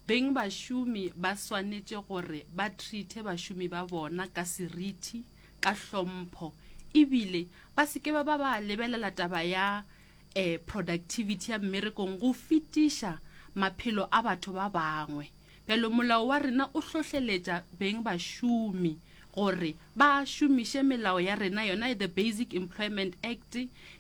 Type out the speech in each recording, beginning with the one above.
Beng bašomi ba swanetše gore ba treate bašomi ba bona ka seriti, ka hlompho e bile ba se ke ba ba ba lebelela taba ya um productivity ya mmerekong go fetiša maphelo a batho ba bangwe. Bjalo molao wa rena o hlohleletša beng bašomi gore ba šomiše melao ya rena yona the Basic Employment Act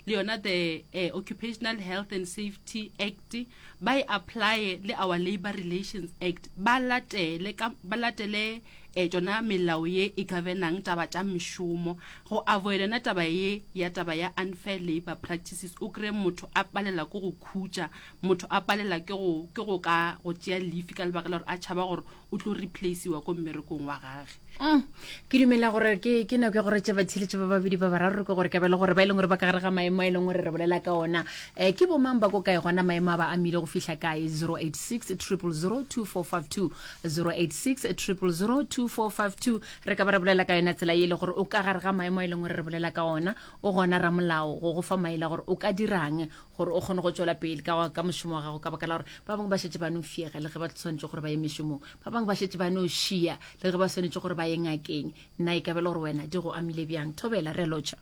le yona the eh, Occupational Health and Safety Act ba e apply le our Labour Relations Act ba latele ka ba latele eh, tšona melao ye e governang taba tša mešomo go avoid yona taba ye ya taba ya unfair labour practices o kry motho a palela ke go khutša motho a palela ke go ke go ka go tšea leafe ka lebaka la gore a tšhaba gore o tlo replaceiwa ko mmerekong wa gage mm. ke dumela gore ke ke nako ya gore tse batsheletše ba babedi ba bararo ke gore ka bele gore ba e leng gore ba ka gare ga maemo a e leng gore re bolela ka ona um ke bomang ba ko kae gona maemo a ba amile go fihla kae 086 triple 0 2452 086 triple 0 2452 re ka ba re bolela ka yona tsela e le gore o ka gare ga maemo a e leng gore re bolela ka ona o gona ramolao go go fa maele gore o ka dirang gore o kgone go tšwela pele ka, ka mošomo wa gago ka baka la gore ba bangwe ba šetse ba no fiega le ge ba tshwanetse gore ba ye mešomong ba bangwe ba šetse ba no šia le ge ba swanetše gore ba ye ngakeng nna e kabele gore wena di go amile bjang thobela re lotšha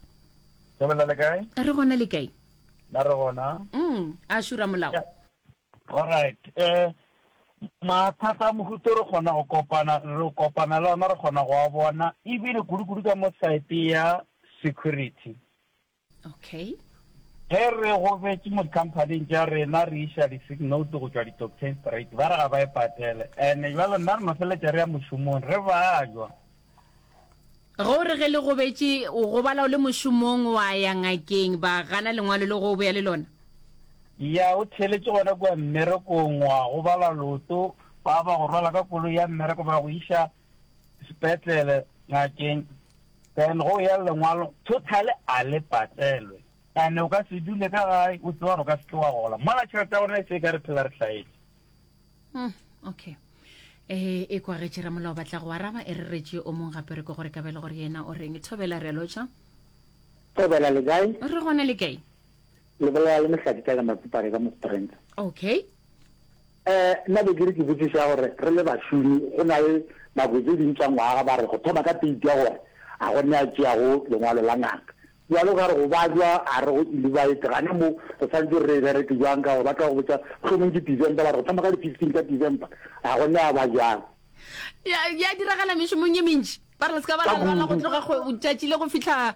thobela le kae re gona le kae na re gona mm a šura molao yeah. alright eh mathata a mohuto re kgona go kopana re kopana le ona re kgona go a bona ebile kudu-kudu ka mo site ya security okay ge re gobetse mo dikhamphaning tša rena re iša di-sick note go tšwa di-doctain straight ba re ga ba e patele and jalo nna re mafeletša re ya mošomong re bajwa go re ge le gobetše o gobala o le mošomong wa ya ngakeng ba gana lengwalo le go o boya le lona ya o theletše gona kua mmerekong wa gobala loto ba ba go rwala ka kolo ya mmereko ba go iša sepetlele, ngakeng, then go ya lengwalo totally a le patelwe ane o ka se dule ka gae o tseba gore o ka seke wa gola mola tšhelete ya gona e se ka re phela re tlhaetse hmm, okay um e kwagetše ramolao batla go araba e re retše o mong gapere ko gore ka bele gore yena o reng thobela re lotšha thobela le kae re gone le kae Lebolola le mehlati tša ka matsipare ka mostrentsa. Okay. Eh, nna be ke re ke botsiša gore re le bašomi go na le nako tse ding tša ngwaga ba re go thoma ka teiti ya gore a go ne a tšeago lengwalo la ngaka. Bjalo ka re go bajwa a re go ilibaete gane mo re santse re e bereke jwang ka gore ba tla go botša mohlomong ke December ba re go thoma ka di fifteen tša December a go ne a ba jwang. Ya ya diragala mešomong ye mentši ba re le se ka ba la lwala go tloga go tšatši le go fihla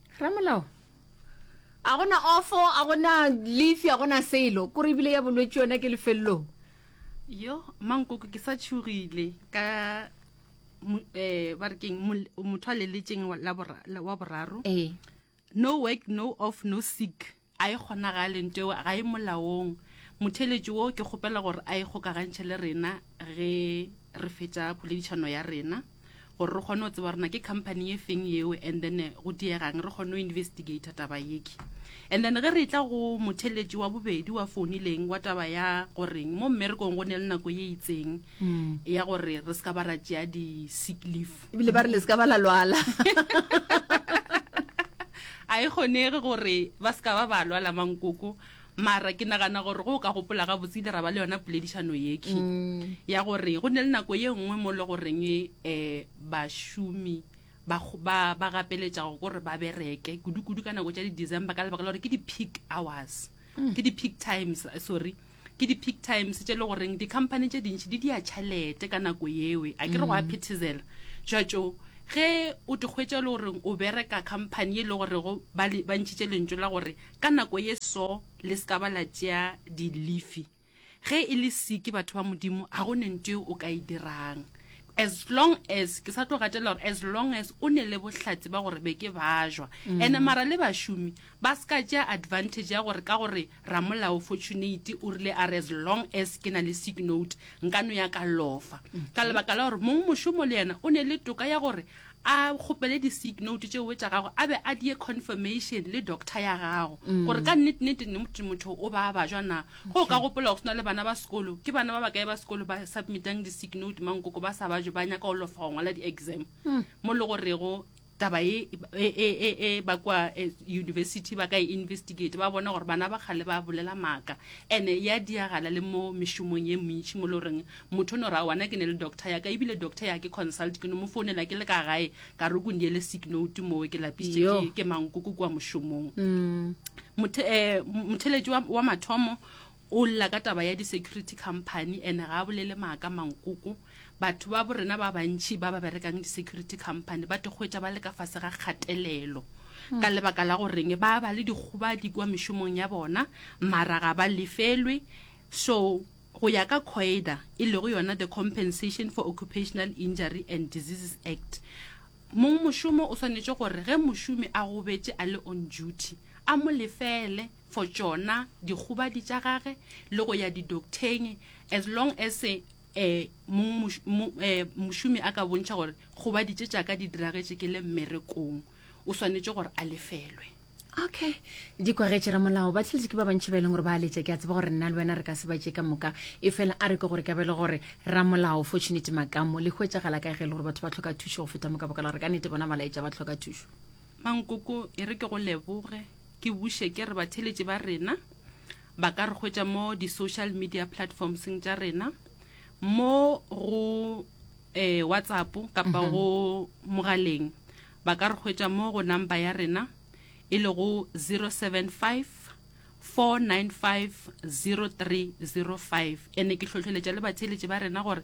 Ramolao, a gona ofo, a gona lefi, a gona selo, kore ebile ya bolwetši yona ke lefelelong. Yo, mankoko ke sa tšhogile ka um ba re keng motho a leletšeng wa boraro. Ee. No work, no off, no sick. A e kgonagale, nteo ga e molaong. Motheeletši wo, ke kgopela gore a ikgokagantšhe le rena ge re fetša poledišano ya rena, gore re kgone go tseba gore na ke company ye feng yeo, and then go diegang re kgone go investigator taba yeke. And then ge re tla go motheeletši wa bobedi wa founileng wa taba ya goreng mo mmerekong go ne le nako ye itseng ya gore re se ka ba ra tšea di-sick leaf, ebile ba re le se ka ba la lwala a e kgonege gore ba se ka ba ba lwala mankoko mara ke nagana gore go o ka gopola ga botse ile ra ba le yona poledišano yeke mm. ya gore go ne le nako ye nngwe mo le goreng um bašomi ba, ba, ba gapeletša go gore ba bereke kudu-kudu ka nako tša di-december ka lebaka la gore ke di-peak hours mm. ke di-peak times sorry Ke di-peak times tše e le goreng di-company tše dintši di dia tšhalete ka nako yewe. A ke re go a mm. phethezela. Jwatšo, ge o tikgwetša e le goreng o bereka company e le gorego ba ntšhitše lentso la gore ka nako ye so le se ka ba la tšea di-leafe ge e le seke batho ba modimo ga go nento e o ka e dirang as long as ke sa tlo gatela gore as long as o ne le bohlatse ba gore be ke bajwa mm. ande mara le bašomi ba se ka tšea advantage ya gore ka gore Ramolao Fortunate o rile a re as long as ke na le sick note nka no ya ka lofa ka lebaka la gore mong mošomo le yena o ne le toka ya gore a kgopele di-sick note tšeoe tša gago a be a die confirmation le doctor ya gago gore ka nnete nnete ne motho motho o ba bajwa na go o ka gopola go se na le bana ba sekolo ke bana ba ba kae ba sekolo ba submitang di-sick note mankoko ba sa bajwe ba nyaka go lofa go ngwala di-exam mo le gorego taba e e e e e ba kwa eh, university ba ka e investigate ba bona gore bana ba kgale ba bolela maaka ene ya diagala le mo mešomong ye mentši mo le goreng motho o no ra wana ke ne le doctor yaka ebile doctor ya ke consult ke no mo founela ke le ka gae ka re ko ndiele sick note moo ke lapisitše Yo. ke- ke mankoko kua mošomong mothe- eh, motheletši wa wa mathomo O lla ka taba ya di security company and ga a bolele maaka mankoko. Batho ba borena ba bantši ba ba berekang di security company ba tekgwetša ba le ka fase ga kgatelelo ka hmm. lebaka la goreng ba ba le dikgobadi kwa mešomong ya bona mara ga ba lefelwe so go ya ka coida e lego yona the compensation for occupational injury and diseases act mong mošomo o swanetše gore ge mošomi a gobetše a le on duty a mo lefele for tšona dikgobadi tša gage le go ya didoktheng as long as eh, mong moš- mo- eh, mošomi a ka bontšha gore kgobadi tše tša ka di diragetše ke le mmerekong o swanetše gore a lefelwe okay di kwagetše ramolao ba tletse ke ba bantši ba e leng gore ba letša ke a tseba gore nna le wena re ka se ba tše ka moka e fela a re ke gore ka be le gore ramolao fortunate makamo le hwetšagala ka ge e le gore batho ba tlhoka thušo go feta moka baka la gore ka nete bona ba laetša ba tlhoka thušo Mankoko, e re ke go leboge, ke buše ke re batheletši ba rena ba ka re hwetša mo di-social media platformsng tša rena mo go eh, WhatsApp kapa mhm. go mogaleng ba ka re hwetša mo go number ya rena e le go 075 4950305 ene ke tlhotlheletša le batheletše ba rena gore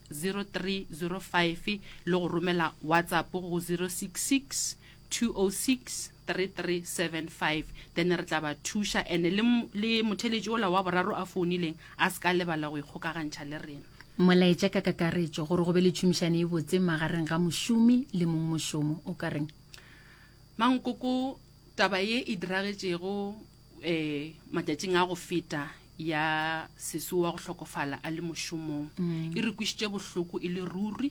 0305 le go romela WhatsApp go 066 206 3375 then re tla ba thuša ene le, le motheletši ola wa boraro a founileng a se ka lebala go ikgokagantšha le rena. Molaetša ka kakaretšo gore go be le tšhomišano e botse magareng ga mošomi le mong mošomo o ka reng? Mankoko, Taba ye e diragetšego e, matšatšing a go feta ya seso wa go hlokofala a le mošomong e re kwišitše bohloko e le ruri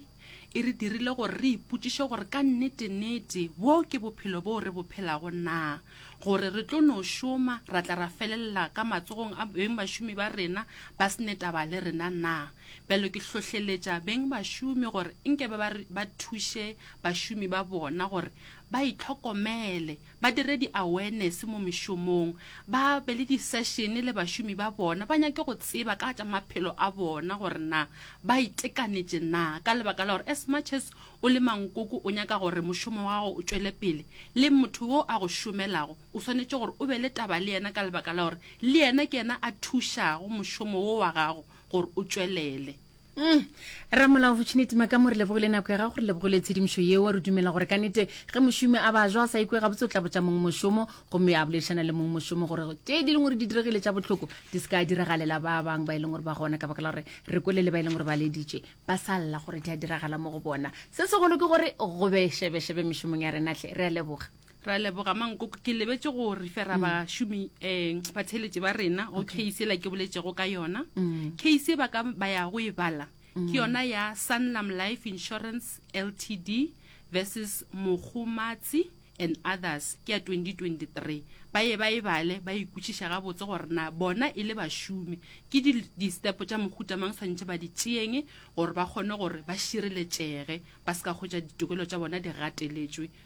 e re dirile gore re ipotšiše gore ka nnete-nnete bo ke bophelo boo re bo phelago na gore re tlo no šoma ra tla ra felelela ka matsogong a beng bašomi ba rena ba sene taba le rena na bjalo ke hlohleletša beng bašomi gore nke ba ba thuše bašomi ba bona gore ba itlhokomele ba dire di-awareness mo mešomong, ba be le di-session le bašomi ba bona, ba nyake go tseba ka tša maphelo a bona gore na ba itekanetše na, ka lebaka la gore as much as o le mankoko o nyaka gore mošomo wa gago o tšwele pele, le motho yo a go šomelago o swanetše gore o be le taba le yena ka lebaka la gore le yena ke yena a thušago mošomo wo wa gago gore o tšwelele. Mm. Ramolao Fortunate Makamore lebogo le nako ya gago re lebogo le tshedimošo yeo re dumela gore ka nete ge mošomi a ba jwa a sa ikwe gabotse o tla botša mong mošomo gomme a boledišana le mong mošomo gore tše di leng gore di diregile tša botlhoko di se ka diragalela ba bangwe ba e leng gore ba gona ka baka la gore re kwele le ba e leng gore ba leditše ba sa lla gore di a diragala mo go bona se segolo ke gore go be šebešebe mešomong ya renatlhe re a leboga ra leboga mankoko ke lebetse go refera bašomi um batheletše ba rena go case ela ke boletšego ka yona case e ba ka ba ya go e bala ke yona ya sanlam life insurance ltd versus mogomatsi and others ke ya 2023 ba ye ba e bale ba ikwešiša gabotse gore na bona e le bašomi ke di- distepo tša mohuta mang tshwanetse ba di tšeeng gore ba kgone gore ba šireletšege ba se ka kgwetša ditokelo tša bona di gateletšwe